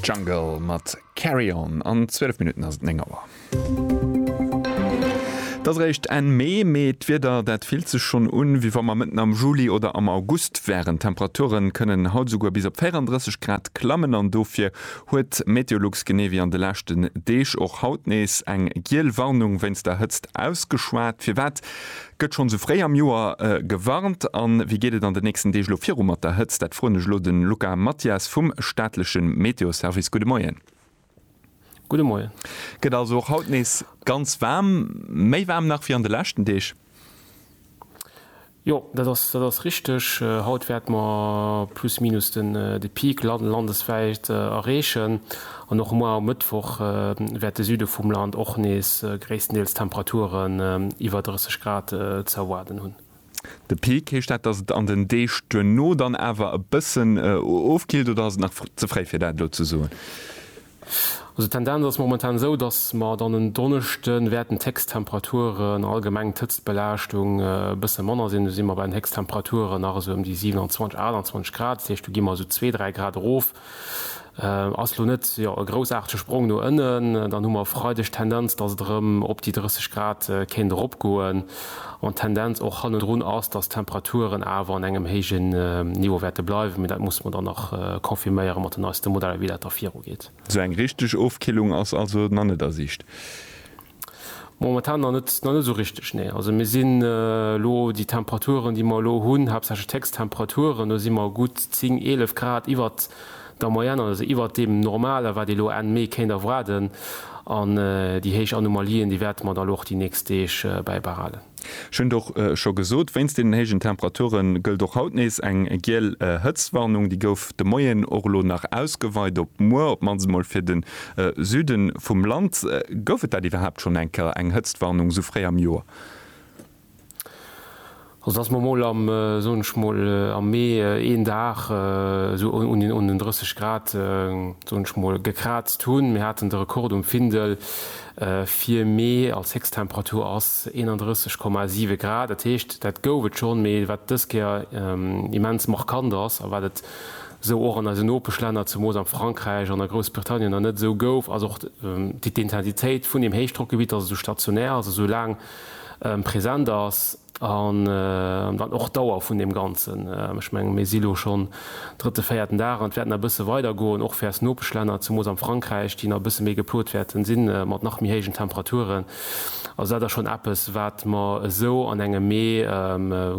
Jungle mat Carry On an 12 Minutten ass et 9 Auer. Et ass eréischt Enn Mee, mee d'Wieder, dat fillt sech schonn un, wéi wa mer mëtten am Juli oder am August wären. D'Temperature kënnen haut esouguer bis op 34 Grad klammen an dofir huet Meteolux genee wéi an de leschten Deeg och haut nees eng giel Warnung wéinst der Hëtzt ausgeschwat. Firwat Gëtt schonn esou fréi am Joer gewarnt? A wéi geet et an den nächsten Deeg elo viru mat der Hëtzt? Dat froen ech elo de Luca Mathias vum staatleche Meteoservice. Gudde Moien. Gudde Moien. Gëtt also och haut nees ganz waarm, méi waarm nach wéi an de leschten Deeg? Jo, dat ass, dat ass richteg. Haut wäerte mer plus minus de Peak landeswäit erreechen. An och muer um Mëttwoch wäert de Süde vum Land och nees gréisstendeels Temperaturen iwwer 30 Grad ze erwaarden hunn. De Peak, heescht dat, dass et an den Deeg duerno dann awer e bëssen ofkillt oder ass et nach ze fréi fir dat elo ze soen? Also d'Tendenz ass momentan esou, dass mer dann en Donneschde wäerten d'Héchsttemperaturen, allgemeng d'Hëtztbelaaschtung e bësse manner sinn. Do si mer bei den Héchsttemperaturen nach esou ëm déi 27, 28 Grad, dat heescht do gi mer esou zwee, dräi Grad erof. Ass elo net e groussaartege Sprong no ënnen. Dann hu mer e Freideg d'Tendenz, dass et erëm op déi 30 Grad kéint eropgoen. An d'Tendenz och hannendrun ass, dass d'Temperaturen awer an engem héijen Niveau wäerte bleiwen. Mee dat musse mer dann nach confirméiere mat den neiste Modeller, wéi dat da virugeet. Esou eng richteg Ofkillung ass also nach net a Siicht. Momentan nach net, nach net esou richteg, nee. Also mir sinn elo, déi Temperaturen, déi mer elo hunn, haaptsächlech d'Héchsttemperaturen, do si mer gutt 10, 11 Grad iwwert der Moyenne, also iwwert deem Normalen, wat ee elo Enn Mee kéint erwaarden. An déi héich Anomalien, déi wäerte mer dann elo och déi nächst Deeg bäibehalen. Ech hunn et och scho gesot, wéinst deenen héijen Temperature gëllt och haut nees eng giel Hëtztwarnung. Déi gouf de Moien och elo nach ausgeweit op muer, op d'mannst emol fir de Süde vum Land. Gouf et dat iwwerhaapt schonn eng Kéier, eng Hëtztwarnung esou fréi am Joer? Also datt mer emol am, soen ech emol, am Mee een Dag esou un den 30 Grad, soen ech emol, gekraazt hunn, mir haten de Rekord um Findel, Fir Mee als Héchsttemperatur ass 31,7 Grad. Dat heescht, dat gouf et schonn, mee wat dës Kéier immens markant ass a wat et esou och an eisen Nopeschlänner, zemoos am Frankräich an a Groussbritannien nach net esou gouf, ass och d'Intensitéit vun deem Héichdrockgebitt, datt et esou stationär ass, esou laang present ass. An dann och d'Dauer vun deem Ganzen. Ech mengen, mir si lo schonn drëtte, véierten Dag an et wäert nach e bësse weidergoen, och fir eis Nopeschlänner, zemools am Frankräich, déi nach e bësse méi geplot wäerte sinn, mat nach méi héijen Temperaturen. Also dat ass schonn eppes, wat mer esou an engem Mee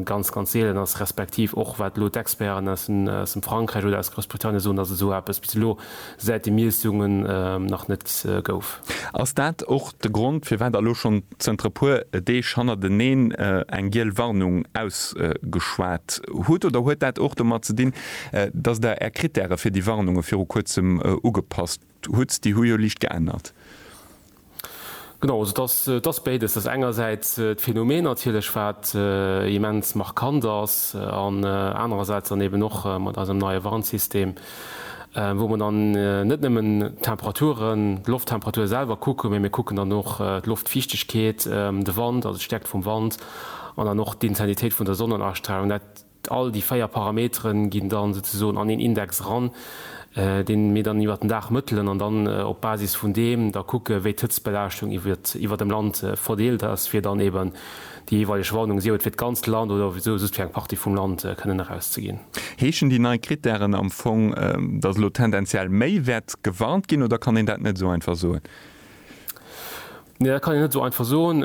ganz, ganz seelen ass, respektiv och wat elo d'Experten aus dem Frankräich oder aus Groussbritannien soen, dass esou eppes bis elo säit de Miessungen nach net gouf. Ass dat och de Grond, firwat elo schonn zënter e puer Deeg hannerteneen eng giel Warnung ausgeschwat hutt? Oder huet dat och domat ze dinn, datt Der Är Krittäre fir déi Warnunge viru kuerzem ugepasst hutt? Déi hu jo liicht geännert. Genau, also et ass, et ass béides. Et ass engersäits d'Phänomen natierlech, wat immens markant ass, an anerersäits dann eeben och mat eisem neie Warnsystem, wou mer dann net nëmmen d'Temperaturen, d'Lofttemperature selwer kucken, mee mir kucken dann och d'Loftfiichtegkeet, de Wand, also d'Stäerkt vum Wand an dann och d'Intensitéit vun der Sonnenastrahlung. All déi 4 Parametere ginn dann souzesoen an een Index eran, deen mir dann iwwert den Dag mëttelen an dann op Basis vun deem da kucke wéi d'Hëtztbelaaschtung iwwert dem Land verdeelt ass, fir dann eeben déi jeeweileg Warnung, sief et fir d'ganzt Land oder souwisou just fir eng Partie vum Land, kënnen erauszeginn. Heeschen déi nei Krittären am Fong, datt elo tendenziell méi wäert gewarnt ginn, oder kann een dat net esou einfach soen? Nee, dat kann een net esou einfach soen.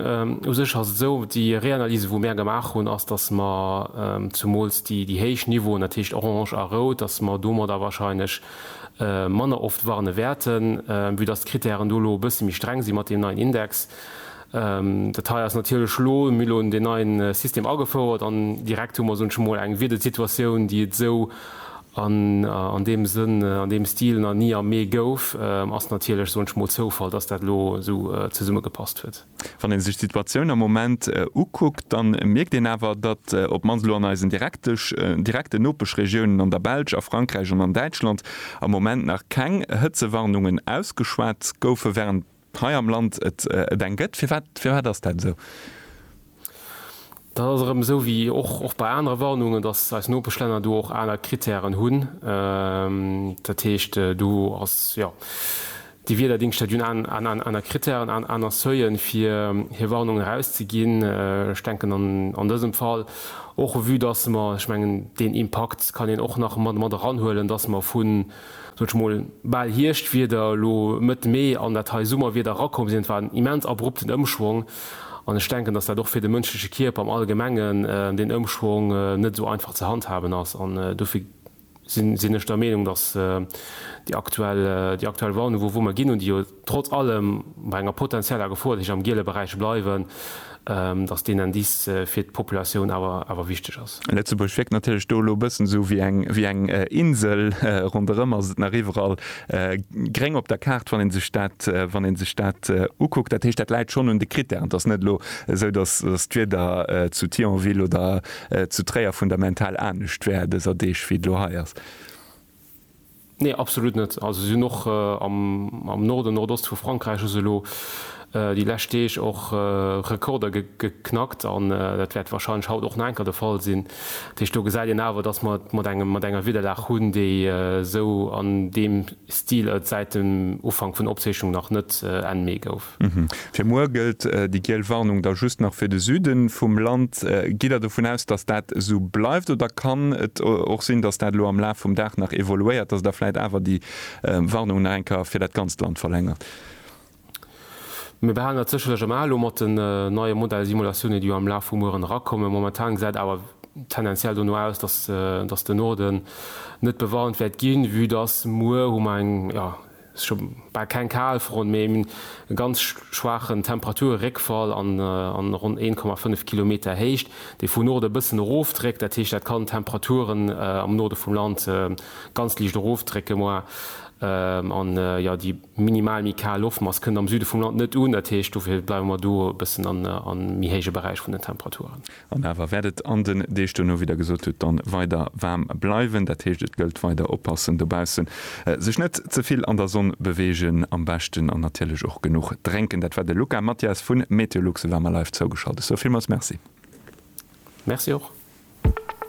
U sech ass et esou, déi Reanalyse wou mär gemaach hunn, ass datt mer zumools déi héich Niveauen, dat heescht orange a rout, datt mer domadder wahrscheinlech manner oft warne wäerten, vue datt d'Krittären do elo e bësse méi streng si mat deem neien Index. Dat hei ass natierlech elo, mir hu elo deen neie System agefouert an direkt hu mer, soen ech emol, eng Wiedersituatioun déi et esou An an deem Sënn, an deem Stil, nach ni am Mee gouf, ass natierlech, soen ech mol, Zoufall, dass dat elo esou zesummegepasst huet. Wann ee sech d'Situatioun am Moment ukuckt, da mierkt een awer, datt op d'mannst elo an eisen direkten Nopeschregiounen, an der Belsch, a Frankräich an an Däitschland, am Moment nach keng Hëtzewarnungen ausgeschwat goufen, wärend, hei am Land et et eng gëtt. Firwat firwat ass dat esou? Dat ass erëm esou wéi och och bei anere Warnungen, datt eis Nopeschlänner do och aner Kritären hunn. Dat heescht, do ass, jo, déi Wiederdingschter déi hunn an an aner Kritären, an aner Seuilen, fir hir Warnungen erauszeginn. Ech denken an an dësem Fall och, vue datt mer, ech mengen, deen Impakt kann een och nach mat mat eranhuelen, datt mer vun, soen ech mol, bal Hierschtwieder elo Mëtt Mee an dat hei Summerwieder erakomm sinn. Et war en immens abrupten Ëmschwong an ech denken, datt dat och fir de mënschleche Kierper am Allgemengen, deen Ëmschwong net esou einfach ze handhaben ass an dofir sinn ech der Meenung, datt déi aktuell, déi aktuell Warnung, wou wou mer ginn un déi trotz allem bei enger potenzieller Gefor, déi sech am giele Beräich bleiwen, dass deen Indice fir d'Populatioun awer wichteg ass. Lëtzebuerg wierkt natierlech do elo e bëssen esou wéi eng Insel, ronderëm ass et nach iwwerall gréng op der Kaart, wann ee sech dat ukuckt. Dat heescht, dat läit schonn un de Critèren. Et ass net elo esou, dass d'Wieder zu Thionville oder zu Tréier fundamental anescht wär dëser Deeg, wéi et elo hei ass. Nee, absolut net. Also si hunn och am Norden, Nordost vu Frankräich hu se elo déi lescht Deeg och Rekorder geknackt an dat wäert warscheinlech haut och nach enker de Fall sinn. Dat heescht, do gesäit een awer, datt mer et mat engem, mat enger Wiederlag hunn, déi esou an deem Stil et säit dem Ufank vun der Opzeechnung nach net, Enn Mee, gouf. Alp. Fir muer gëllt déi giel Warnung da just nach fir de Süde vum Land. Gitt Der dovun aus, datt dat esou bleift oder kann et och sinn, datt dat elo am Laf vum Dag nach evoluéiert, datt Der vläit awer déi Warnung nach eng Kéier fir dat ganzt Land verlängert? Mir behalen dat sécherlech am A elo mat den neie Modellsimulatiounen, déi jo am Laf vu mueren erakommen. Momentan gesäit awer tendenziell dono aus, datt de Norden net bewarnt wäert ginn, vue datt muer hu mer eng, jo, Sech hu bal keng Kalfront méi en ganz schwaachen Temperaturréckfall an ronn 1,5 Kilometer Héicht, déi vun Norde bëssen erofdréckt. Dat heescht, dat kann d'Temperaturen am Norde vum Land ganz liicht erofdrécke moi an jo déi minimal méi kal Loftmass kënnt am Süde vum Land net un. Dat heescht, dofir bleiwe mer do e bëssen a méi héije Beräich vun den Temperaturen. An awer wäert et an den Deeg duerno, wéi Der gesot hutt, dann weider waarm bleiwen. Dat heescht, et gëllt weider oppassen dobaussen, sech net ze vill an der Sonn beweegen am beschten an natierlech och genuch drénken. Dat war de Luca Mathias vun Meteolux, e war mer live zougeschalt. Ech soe villmools Merci. Merci och.